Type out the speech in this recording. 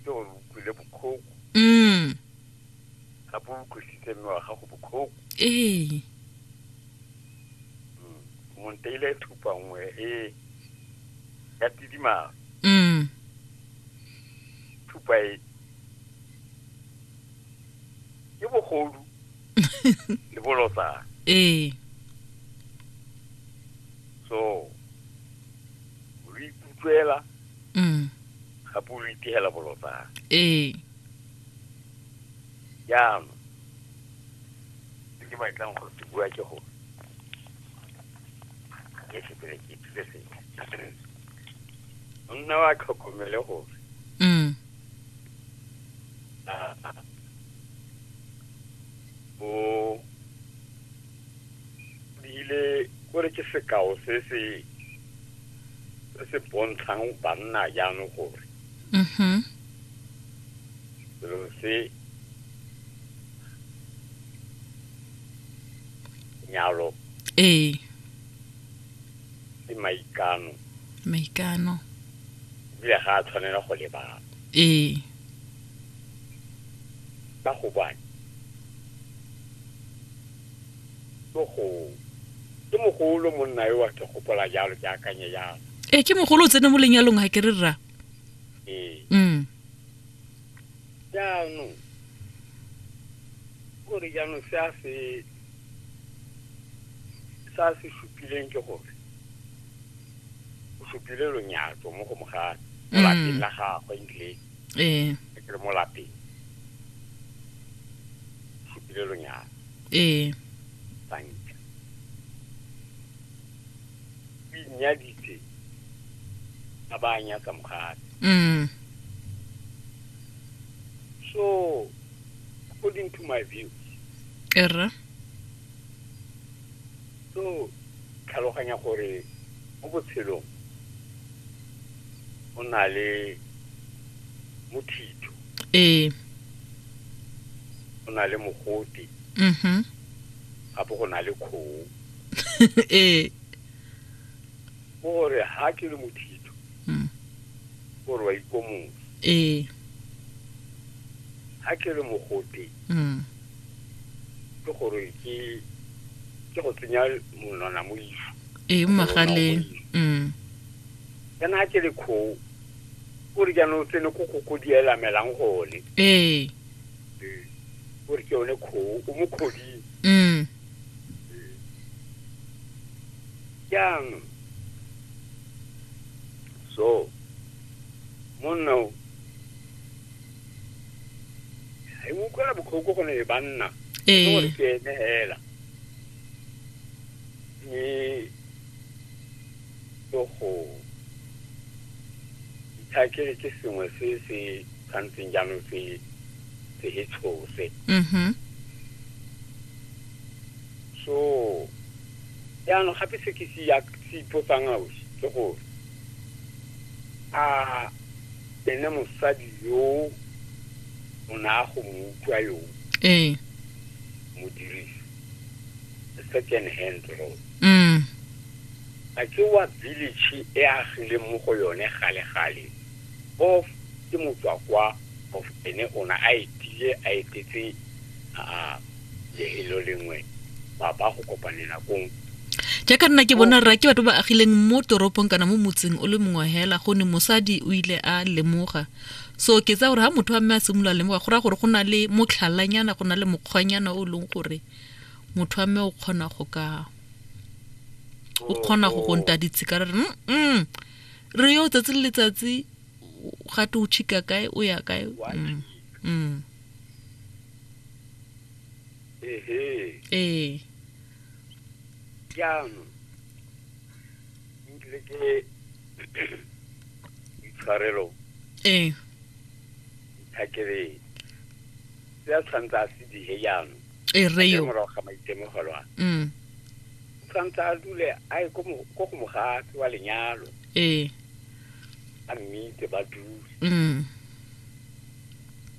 ke gore o utlwile bokhoko mm gape o utlwisitse mme wa gago bokhoko ee Mm. monteile e thupa nngwe e ya tidimalo mm thupa e ke bogodu le bolotsana ee so o ikutlwela mm. gape o lo itegela bolotsana ee jaanong se ke batlang go se bua ke gore ke sepele ke ithute sentle monna wa tlhokomele gore mm. o bile kore ke sekao se se se se bontshang banna jaanong gore mm-hmm. selo se nyalo ee ke maikano maikano ebile ga a tshwanela go lebala ee ka gobane Tlogong. Ke mogolo monna yo wa ke gopola jalo ke akanye jalo. E ke mogolo o tsene mo lenyalong ga ke re rra. Ee. Mm. Jaanong gore jaanong se a se sa se supileng ke gore o supile lonyatso mo go mogane mo lapeng mm. la gagwe ebile ee ke re mo lapeng fetile lonyalo ee banka o inyaditse a ba a nyatsa mogale mm so according to my view erra so tlhaloganya gore mo botshelong o na le mothitho ee o na le mogote mhm gape go na le kgoo ee go gore ga ke le mothitho Mm. gore wa ikomosa ee ga ke le mogote mm ke gore ke ke go tsenya monwana mo isu ee mo magaleng mm. kana a ke le kgoo o re jaanong o tsene ko koko di elamelang gone ee o re ke yone kgoo o mo kgoding mm. jaanong so monna o e mo utlwela botlhoko go ne e banna gore ke ene hela Ke tlo go itha ke re ke sengwe se se tshwantseng jaanong se se e tshose mhm so jaanong gape se ke se ya se ipotsang ausi ke gore a ene mosadi yo o ne a go mo utlwa yo ee modirisi second hand road mm. a ke wa village e agile mo go yone gale-gale of ke motswa kwa of ene ona a etile a etetse a lehelo lengwe ba ba go kopanela kong jaaka nna ke bona rra ke batho ba agileng mo toropong kana mo motseng o le mongwe hela gone mosadi o ile a lemoga so ke tsa gore ga motho a mme a simolola lemoga go raya gore go na le motlhalanyana go na le mokgwanyana o e leng gore motho a mme o kgona go ka o kgona go go nta ditshika re re mm re yo tsatsi le letsatsi ga te o chika kae o ya kae mm, mm. ee jaanong butle ke itshwarelo ee ithakeleng se a tshwanetse a se dihe jaanong ee rre yo morago ga maitemogelo a mm tshwanetse a dule a ye ko mo- ko go mogatse wa lenyalo ee a mmite ba dule mm